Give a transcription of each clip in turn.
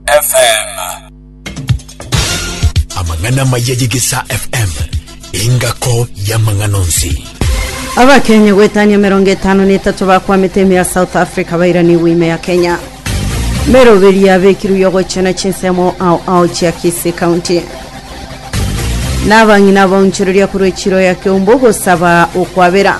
FM. Amang'ana amaya ye Gesa FM, engako y'amang'ana onsi. Abakenya gwetania mirongo etano na etato bakwamete ime ya South Africa bairaniwe ime ya Kenya. Meroberi yabekirwe yogochena chinsemo ao ao chia Kisii County. Nabang'ina abaonchoreria korwa echiro ya Keumbu gosaba okwabera.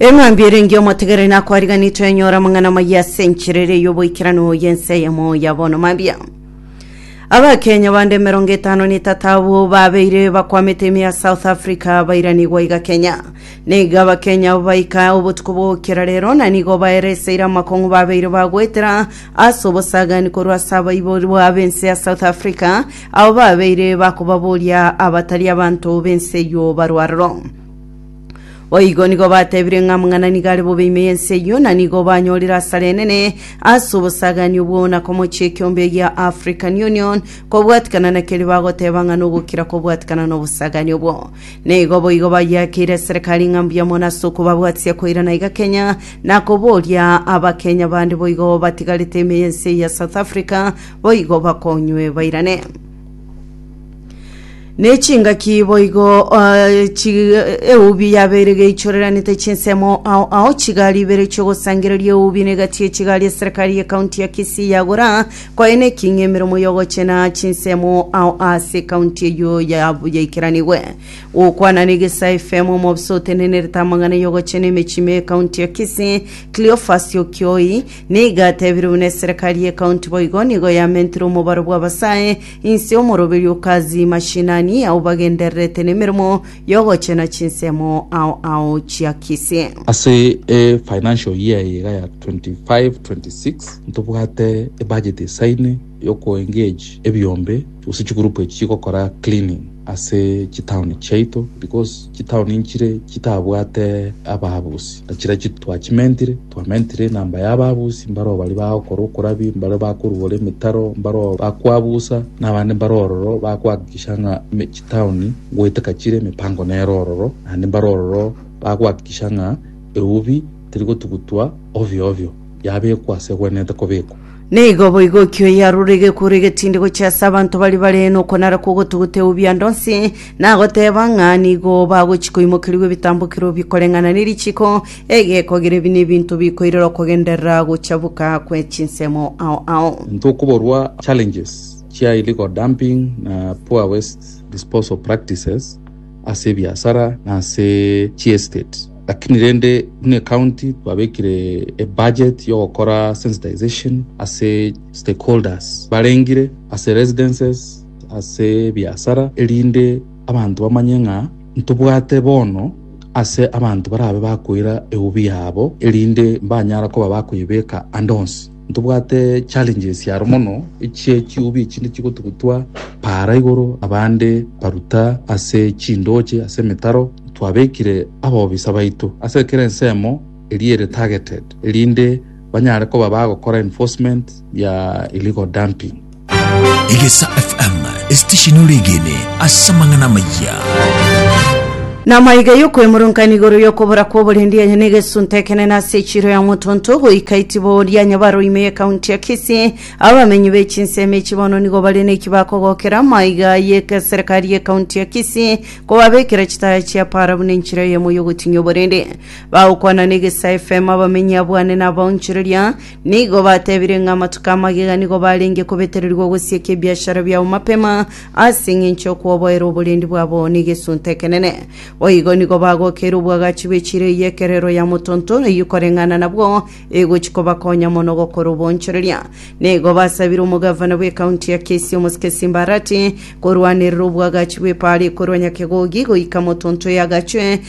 Eng'ambi ere engiya omotegereri nakwariganire twenyora amang'ana amaya ase enchera ere y'oboikeranu y'ense eyemo ya bono mambia. Abakenya bande emerongo etano na etato abwo babeire bakwamete ime ya South Africa bairanigwa iga Kenya. Nigo Abakenya abo baika obotuko bw'ogokira rero na nigo baereseire amakong'u babeire bagoetera ase obosagani korwa ase abaiborwa ab'ense ya South Africa abo babeire bakobaboria abatari abanto b'ense eyio barwo aroro. Boigo nigo batebire ng'a mang'ana nigo are bobe ime y'ense eyio, na nigo banyorire asara enene ase obosagaanio bwao na komochia ekeombe gia African Union kobwatikana na keria bagoteba ng'a nogokira kobwatikana n'obosagaanio obwo. Nigo boigo bayiakeire eserekari ng'a mbuya mono ase okobabwatisia koirana iga Kenya na koboria Abakenya bande boigo batigarete ime y'ense eye ya South Africa boigo bakonywe bairane. Nechingaki boigo eh, chi- eubi yabeire geichoreranete chinsemo ao ao chigari ibere chiogosangereria eubi negati echigari eserikari ye kaunti ya Kisii yagora koene eking'e emeremo yogochena chinsemo ao ase kaunti eyio ya- yaikeranigwe gokwana negesae FM omobisa otenenerete amang'ana yogochena emechie me kaunti ya Kisii Cleophas Okioi Nigo atebire buna eserekari ye kaunti boigo nigo yamentire omobaro bw'abasae inse y'omoroberio o Kazi mashinani ao bagendererete nemeremo y'ogochena chinsemo ao ao chia Kisii. Ase e financial year eye iga ya 25-26 ntobwate ebudget esaine yoko engage ebiombe gose chigroup echi chigokora cleaning ase chitown chiaito because chitown nchire chitabwate ababusi na chiria twachimentire Twamentire enamba y'ababusi, mbareo baria bagokora okorabi, mbareo bakoruora emetaro, mbareo bakwabusa, na abande mbare ororo bakohakikisha ng'a me- chitaoni goeteka chire emipango nere ororo, naende mbare ororo bakohakikisha ng'a eubi terigotugutwa ovyo ovyo, yabekwa ase egwenerete kobekwa. Naigo boigo ekio yarure egekuro egetindi gochia ase abanto baria bare nokonara kw'ogotuguta eubia ndonsi, nagoteeba ng'a nigo bagochia koimokerigwa ebitambokero bikoreng'ana ne richiko, egekogera ebi nebinto bikoirera okogenderera gochabuka kwe chinsemo ao ao. Ntokoborwa challenges chia illegal dumping na poor waste disposal practices ase ebiasara na ase chiestate. Lakini rende buna ecounty twabekire ebudget yogokora sensitization ase stakeholders barengire ase residences ase ebiasara erinde abanto bamanye ng'a ntobwate bono ase abanto barabe bakoira eubi yabo erinde mbanyara koba bakoyebeka ande onsi. Ntobwate challenges aro mono echie chiubi echinde chigotugutwa paara igoro abande baruta ase chindoche ase emetaro twabekire abobisa baito ase kera ensemo eria ere targeted erinde banyare koba bagokora enforcement ya illegal dumping. Egesa FM, esitesheni oregene ase amang'ana amayia. Namaiga y'okwemurunkaina igoro y'okobora kw'oborendi enye n'egesunta ekenene ase echiro ya motonto goika itibo oria nyabaro ime y'ekaunti ya Kisii abamenyi b'echinsemo echi bono nigo bare neki bakogokera maiga y'ekeserikari y'ekaunti ya Kisii kobabekera chitaya chia para buna enchera eyemo y'ogotinyia oborendi bagokwana n'egesa FM abamenyi abwane nabaonchoreria Nigo batebire ng'a amatuko amagega nigo barenge kobetererigwa ogosieka ebiashara biabo mapema ase eng'encho y'okwoboera oborendi bwabo negesunte ekenene. Boigo nigo bagokeire obwagachi bwe chire eye ekerero ya motonto eyio koreng'ana nabwo egochi kobakonya mono gokora obonchoreria. Nigo basabire omogavana bw'ekaunti ya Kisii omosike Simba Arati korwanerera obwagachi bw'epaara ekorwa Nyakegogi goika motonto eyagachwe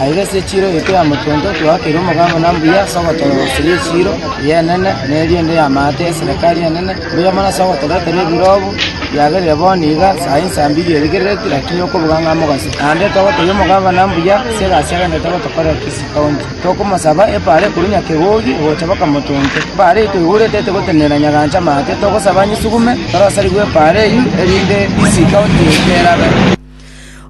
Aiga ase echiiro eito ya motonto twaakire omogango na mbuya ase ogotoorosera echiiro y'enene na eriende y'amaate y'eserekari enene, mbuya mono ase ogotoretera ebirobu biagerire bono iga saa insa mbirie erigereretie, lakini okobuga ng'a mogaso. Naende togoteebia omogavana mbuya ase egasi agenderete gotokorera Kisii County. Tokomosaba epaara ekorwa Nyakegogi ogocha mpaka Motonto. Epaara eyio toigorete etogotenena Nyagancha amaate, togosaba anyisugume torosarigwe epaara eyio, erinde Kisii County erabe.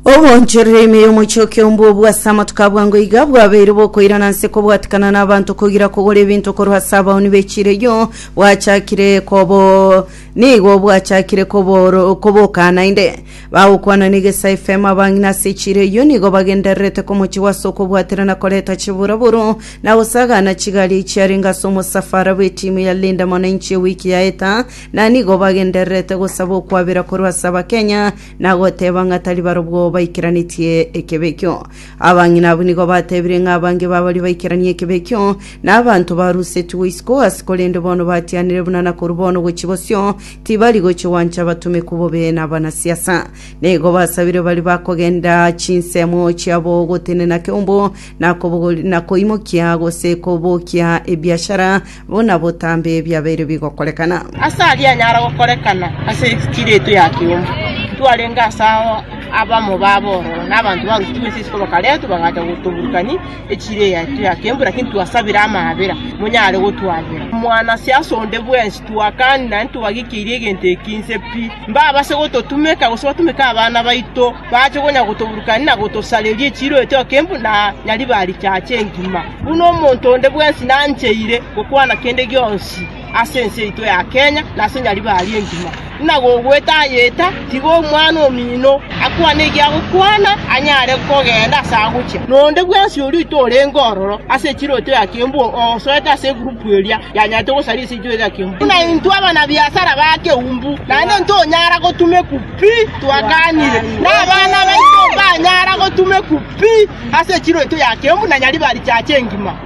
Ogooncherera ime y'omochooki ombwa obwo ase amatuko abwango iga bwabeire bokoirana nse kobwatikana n'abanto kogira kogora ebinto korwa ase abaoni b'echireyo bwachakire kobo nigo bwachakire koboro koboka naende bagokwana n'egesa efemo abang'ina ase echireyo nigo bagendererete komochi gwase okobwatera na koreta chiburaburo na gosagana chigari chiarenge ase omosafara bw'etimu ya Linda Mwananchi ewiki yaeta na nigo bagendererete gosaba okwabera korwa ase abakenya na goteba ng'a tari barobwo baikeranetie ekebe ekio. Abang'ina abwo nigo batebire ng'a abange babaria baikeranie ekebe ekio nabanto barusetigwe isiko ase korende bono batianire buna na korwa bono gochia bosio tibari gochia gwancha abatomeku bobe na abanasiasa. Nigo basabire bari bakogenda chinsemo chiabo gotenena keumbu na kobogori- na koimokia gose kobokia ebiashara Buna botambe ebiabeire bigokorekana. Ase ayio anyara gokorekana ase echichiri yaito ya kiombe, ntwarenge ase ao abamo b'abororo, na abanto b'arusia tw'ense isiko bakaretwa, bagacha gotoburukania echichiri yaito ya kiombe, lakini twasabire amaabera, monyare gotwabera. Mwanase ase onde bwensi, twakani, naende twagikeirie egento eki inse pi, mbabase gototumeka, gose batumeke abana baito. bache konya gotoburukania na gotosareria echiiro etoke embu na nyaribaa richache engima, buna omonto onde bwensi nancheire gokwana kende gionsi ase ense yaito ya Kenya na ase nyaribari engima. Buna gogwetayeta, tiga omwana omino akwane egiagokwana anyare kogenda ase agochia, na onde bwensi oria oito orenge ororo ase echiiro yaito ya kembu osoete ase egurupu eria yanyarete gosaria ase echiiro yaito ya kembu. Buna intwe abana biasara ba keumbu, naende intwe onyara gotuma ekuku. pi twakanire, na abana baito mbanyara gotumekwa pi ase chiroito ya Keumbu na Nyaribari chiacha engima.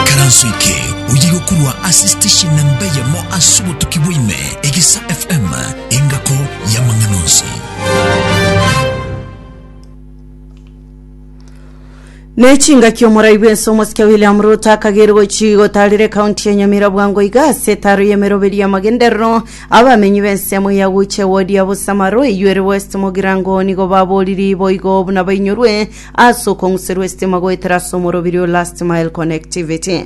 Ekaranso eke oye gokurwa ase station namba eyemo ase obotuki bwaime, Egisa FM, engako y'amang'ana onsi. Nechingaki omorai bwense omosike William Ruto akagerwa chigotarire ekaunti ya Nyamira bwango iga ase etaro y'emeroberi y'amagenderero abamenyi b'ensemo ya Guche wodi ya Busamaro eyuere West Mogirango nigo baboriri boigo buna bainyorwe ase okong'userwa esitima goetera ase omorobiri o Last Mile Connectivity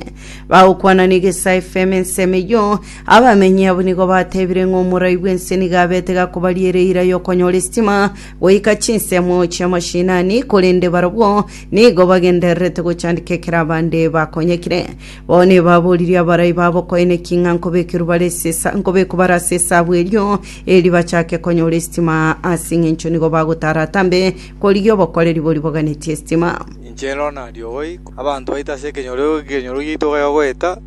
bagokwana na Igesa FM ensemo eyio abamenyi abo nigo batebire ng'a omorai bwense nigo abete gakobaria ere eira y'okonyora esitima goika chinsemo chi'amashinani, korende barabwo nigo bagendererete gochandika ekero abande bakonyekire. Bono ebaboririe abarai babo koeneki ng'a nkobekerwa bare ase esa- nkobekwa bare ase esabu erio, eri bachake konyora esitima, ase engencho nigo bagotaara atambe korigia obokoreri boria boganetie esitima. Inche nero nario boigo. Abanto baito ase ekenyoro ekenyoro giaito bayogoeta.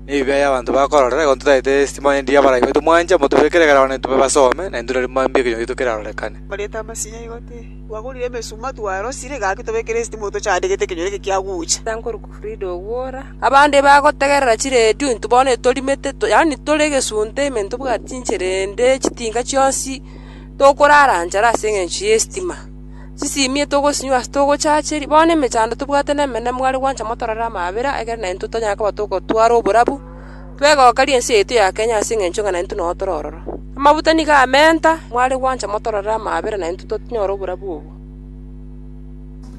nebibe y'abanto bakorora, igo ntotaete estima eria eria abarai baito mwancha, motobekere ekero abana baito babasoome, na intwe nari mambia ekenyoro gito kerarorekane. Korenta amasinya igo te. Twagorire emesuma, twarosire, gaki tobekere estima oyo tochande gete ekenyoro eke kiagocha. Tankoruka Frida ogwora. Abande bagotegerera chiredio, intwe bono etorimete, to- yaani tore egesunte ime ntobwati inchera ende, chitinga chionsi, tokorara nchara ase eng'encho y'estima. Chisimie togosinywa ase togochacheria. Bono emechando tobwate nemenene mware gwancha motorore amaabera, ekero naintwe tonyare koba togotwara oborabu, twegokarie ense yaito ya Kenya ase engencho ng'a naintwe noo tore ororo. Amabuta nigo amenta, mware gwancha motorore amaabera naintwe tonyore oborabu obo.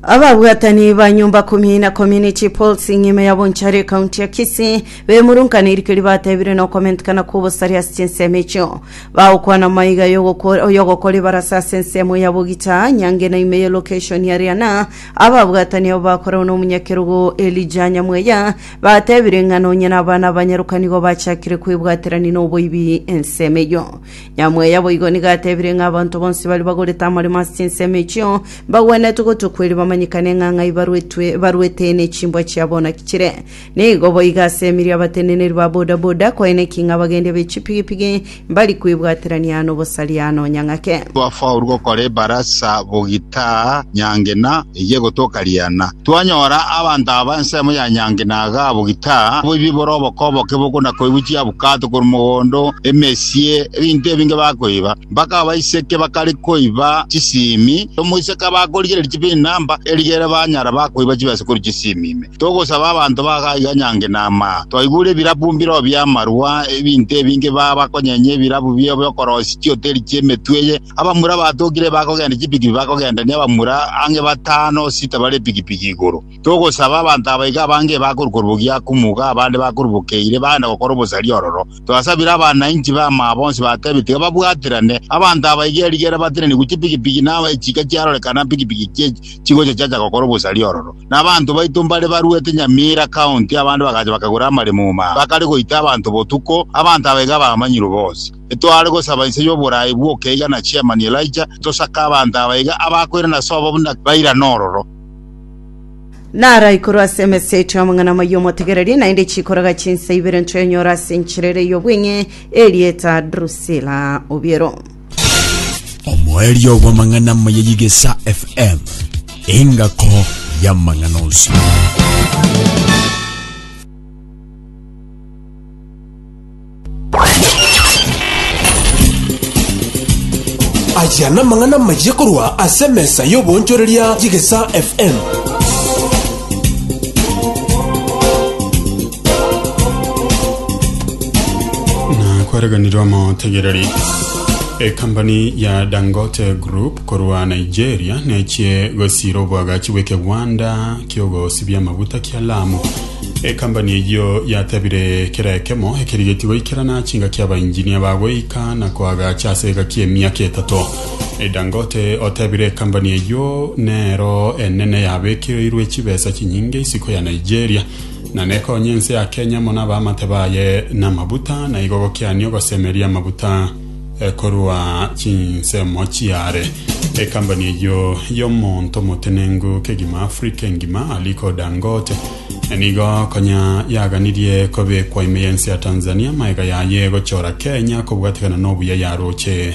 Ababwatani ba nyomba komi na komi ne chipolts ng'ima ya Bonchari ekaunti ya Kisii bemurunkaniri keria batebire nokomentekana kw'obosaria ase chinsemo echio. Bagokwana maiga y'ogoko- y'ogokora ebarasa ase ensemo ya Bogita, nyange na ime ye location ya Riana. Ababwatani abo bakoragwa nomonyakerogo Elijah Nyamweya batebire ng'a nonye nabana abanyaroka nigo bachakire kwebwaterani noboibi ensemo eyio. Nyamweya boigo nigo atebire ng'a abanto bonsi baria bagorete amaremo ase chinsemo echio mbagwenerete gotwa kweria bamanyekane ng'a ng'ai barwetwe barwete ne chimbwa chiabo naki chire. Nigo boigo ase emeeri abateneneri ba bodaboda kwaine eking'a abagendia be chipigipigi mbari kwebwaterania nobosaria nonya ng'ake. Twafaurwa gokora ebarasa bogita nyangena eyio egotoka riana. Twanyora abanto aba ensemo ya nyangena iga bogita, oboibi bore oboko oboke bokona koigwa chiabukato korwa mogondo, emesie, ebinto ebinge bakoiba. Mpaka abaiseke bakare koiba chisimi, omoiseke abakorigereria chibinamba, erigere banyara bakoiba chibesa korwa chisimi ime. Togosaba abanto bagaiga nyange na amaa. Twaigure ebirabu mbireo bi'amarua, ebinto ebinge baba bakonyenya ebirabu biabo bi'okoroisia chioteri chi'emetwe eye. Abamura batokire bakogenda chipikipiki bakogendania abamura ang'e batano sita bare epikipiki igoro. Togosaba abanto aba iga abange bakorwa korubogia Akumuga, abande bakorwa Bokeire, bagenda gokora obosaria ororo. Twasabire abanainchi b'amaa bonsi batebe tiga babwaterane. Abanto aba iga erigere batenenigwe chipikipiki na chika chiarorekana mpikipiki chie chigocha chiacha gokora obosaria ororo. Na abanto baito mbare baruete Nyamira county abande bagacha bakagora amaremo omo aa, bakare goita abanto botuko, abanto aba iga abamanyirwe bonsi. Etoare gosaba inse y'oboraai bw'okeiga na Chairman Elijah, tosake abanto aba iga abakoirana ase obobe buna bairane ororo. Nara igoro ase emeseti y'amang'ana amaya omotegereri, naende chikoroga chinsa ibere ntoenyora ase enchera ere y'obweng'e, erieta Drusila Obiero. omoerio bw'amang'ana amaya y'Igesa FM, engako y'amang'ana onsi. Aya n'amang'ana amaya korwa ase emesa y'oboonchoreria y'Igesa FM. na kwareganirwa amategereri ekambani ya dangote group korwa nigeria nechie gosira obwagachi bw'ekegwanda kiogosibia amaguta kia lamu ekambani eyio yatebire kera ekemo ekerigetie goikerana chingaki abainjinia bagoika na koagacha ase egaki emiaka etato E dangote otebire ekambani eyio nero enene yabekereirwe chibesa chinyinge isiko ya nigeria na nekonye ense ya Kenya mono abaamate baye namabuta, na igo gokiania ogosemeria amabuta eh, korwa chinsemo chiare. Ekambani eyio y'omonto omotenengu kegima Africa engima, Aliko Dangote, eh, nigo konya yaganirie kobekwa ime y'ense ya Tanzania maega yaye gochora Kenya kobwatekana n'obuya yaroche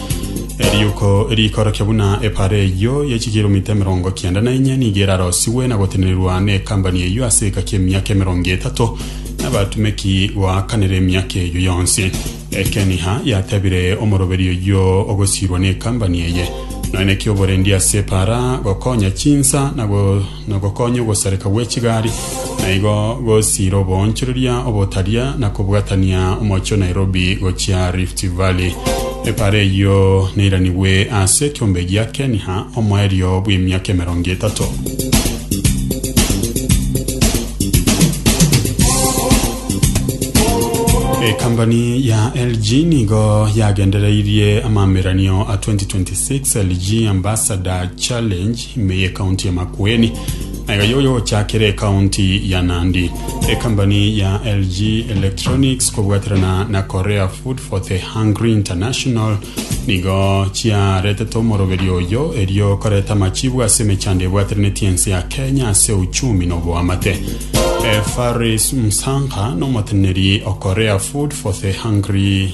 Eriuko riikorokia buna epaara eyio ye chikiromita emerongo kenda na inye nigo erarosigwe na gotenenerwa n'ekambani eyio ase egaki emiaka emerongo etato, na abatumeki goakanera emiaka eyio yonsi. Ekeniha yatebire omoroberi oyio ogosiirwa n'ekambani eye, Noe naki oborendi ase epaara gokonya chinsa na go na gokonya ogosareka gwe chigari, na igo gosiira oboonchoreria obotaria na kobwatania omochie o Nairobi gochia Rift Valley. Epara eyio neiranigwe ase ekiombe gia Keniha omoerio bw'emiaka emerongo etato. Ekambani ya LG nigo yagendereirie amameranio a 2026 LG Ambassador Challenge Ime y'ekaunti ya Makueni nayo yoyochakera ekaunti ya Nandi. Ekambani ya LG Electronics kobwaterana na Korea Food for the Hungry International nigo chiaretete omoroberio oyo erio koreta amachibu ase emechando ebwateraneti ense ya Kenya ase uchumi na oboamate. Eh, Faris Msangha n'omoteneneri o Korea Food for the Hungry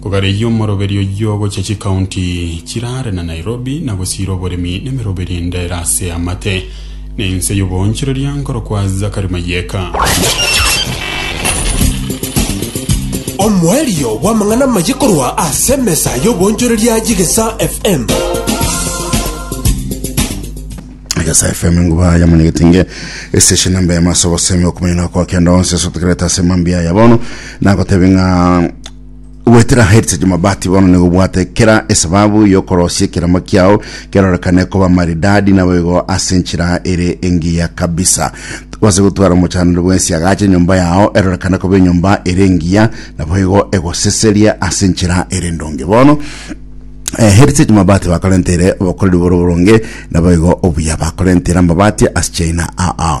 Kogareyia omoroberio oyio ogochia chikaunti chiraare na Nairobi na gosiira oboremi nemeroberio ende ere ase amate na ense y'oboonchoreria nkorokwa Zachary Mayeka. Omoerio bw'amang'ana amaye korwa ase emesa y'oboonchoreria y'Egesa FM. Egesa FM nguba ya munyegetinge estation namba ya maso bosemi okumenya na kwa kenda onse so tukereta ase mambi aya bono na gotebe nga Goetera Heritage Mabati bono nigo bwate kera esababu y'okorosia ekeremo kiao kerorekane koba maridadi naboigo ase enchera ere engiya kabisa. Twase gotwara omochanore bwensi agache enyomba yao erorekane koba enyomba ere engiya naboigo egoseseria ase enchera ere endonge bono. Eh, Heritage Mabati bakorentere obokoreri boro boronge naboigo obuya bakorentera amabati ase China aa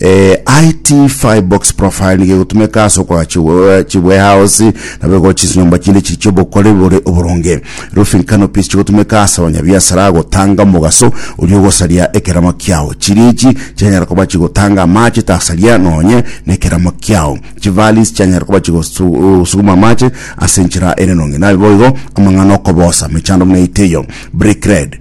Eh, IT Firebox Profile nigo egotumeka ase okora chiwe- chiwarehouse nabo egokora chinyomba chinde chiri chiobokore bore oboronge. Roofing canopies chigotumeka ase abanyabiasara gotanga omogaso oria ogosaria ekeramo kiao. Chirichi chianyara koba chigotanga amache tasaria nonye nekeramo kiao. Chivalleys chianyara koba chigosuguma amache ase enchera ere enonge. Naboigo amang'ana okobosa mechando buna eteyo. Brickred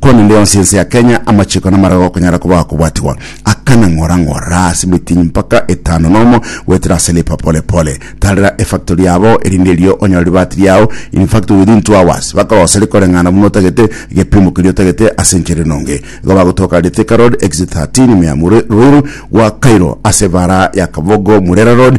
Korende yonsi ense ya Kenya amachiko namareo okonyara koba akobwatigwa akana ng'ora ng'ora ase emitinyi mpaka etano nomo goetera ase lipa pole pole. Tarera efactory yabo erinde erio onyore ribaati riao in fact within two hours bakorosa rikoreng'ana buna otagete egepimo keria otagete ase enchera enonge. Igo bagotoka riri Thika Road, Exit 13, Miamu Ruiru gwa Cairo ase ebara ya Kabogo Murera Road,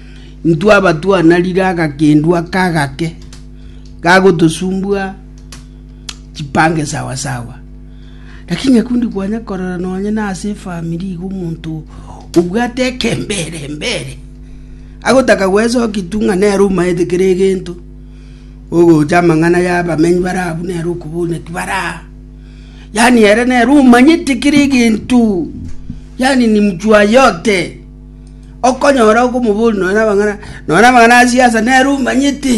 Intwabatwanarire agakendwa aka agake gagotosumbua chipange sawa sawa. Lakini ekio ndikwanya korora nonye na ase efamiri iga omonto obwate ekembere mbere, agotaka gwesokia tu ng'a nere omaete kera egento, ogocha amang'ana ya abamenyi bare abwo nere okoboria naki bare aa. Yaani ere nere omanyete kera egento, yaani ni mtu wa yote. Okonyora okomobori nonya namang'ana, nonya namang'ana a siasa nere omanyete.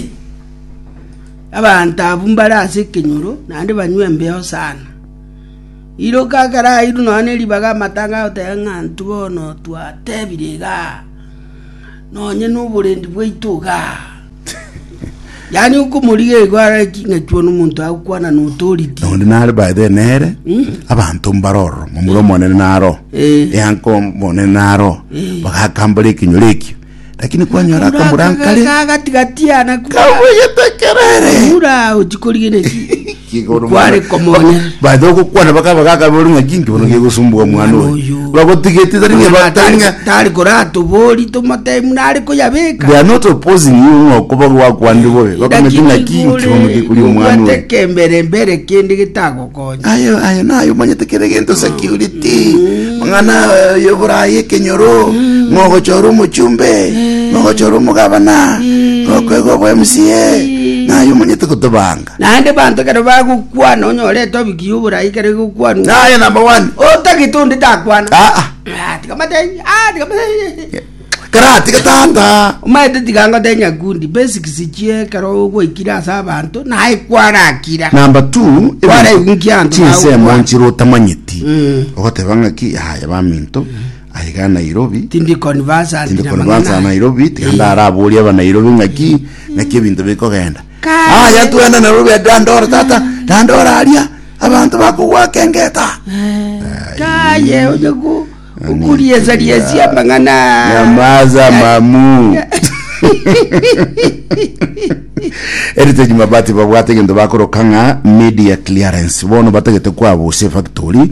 Abanto abwo mbare ase ekenyoro, naende banywa embeo sana. Iroka ekero airwe nonya na eribaga amatanga agoteba ng'a intwe bono twatebire igaa, nonye na oborendi bwaito igaa. Yaani okomorigia igo are ching'echwa nomonto agokwana na authority. na onde nare by the nere abanto mbare ororo momura omonene naro Eh. eanko omonene naro bagakambora ekenyoro ekio lakini kwanyora akamura nkare Kagatigatiana kura. kabuyetekerere Mura ochikorigeneti. Igoro Kware mwana. komonya. Bacha gokwana bakaba gakabori ng'a chinki bono gegosumbuka mwana Omwana oyo. oyo. Bagotigeti tari ng'a Omwana batari ng'a tari- tari koratobori tomotemu nare koyabeka They are not opposing you ng'a okoba gwakwanire bobe. Bakometi ng'a chinki bono gekori omwana oyo. kembere mbere kende getagokonya Ayo ayo nayo omanyete kere gento security. Mang'ana eh, yoborai ekenyoro. Mogochora omochumbe. Mogochora omogabana. Okwega obwa MCA. Nayo omanyete gotobanga. Naende banto ekero bagokwana onyore etopiki y'oborai ekero egokwanwa. Naye number one. Otagete onde takwana. Ah, ah. Ah, tiga matei. Ah, tiga matei. Karatige tata. Omaete tiga ngote nyakundi basics chie ekero ogoikira ase abanto naye kwarakira. Number two. Kwara egunki anto Chinsemo bagokwana. nchire otamanyeti. Mm. Ogoteba ng'aki yaya baminto. Aiga Nairobi. Tindi conversant Tindi na kore mang'ana. bansa Nairobi. Tiga ndara aboria aba Nairobi ng'aki. Ng'aki ebinto bikogenda. Aya twende narwo bwe dandora tata dandora aria abanto bakogwaka engeta kaye oje ku okuriesia riesia amang'ana nyamaza mamu Heritage Mabati babwate egento bakoroka ng'a media clearance bono batagete kwabuse factory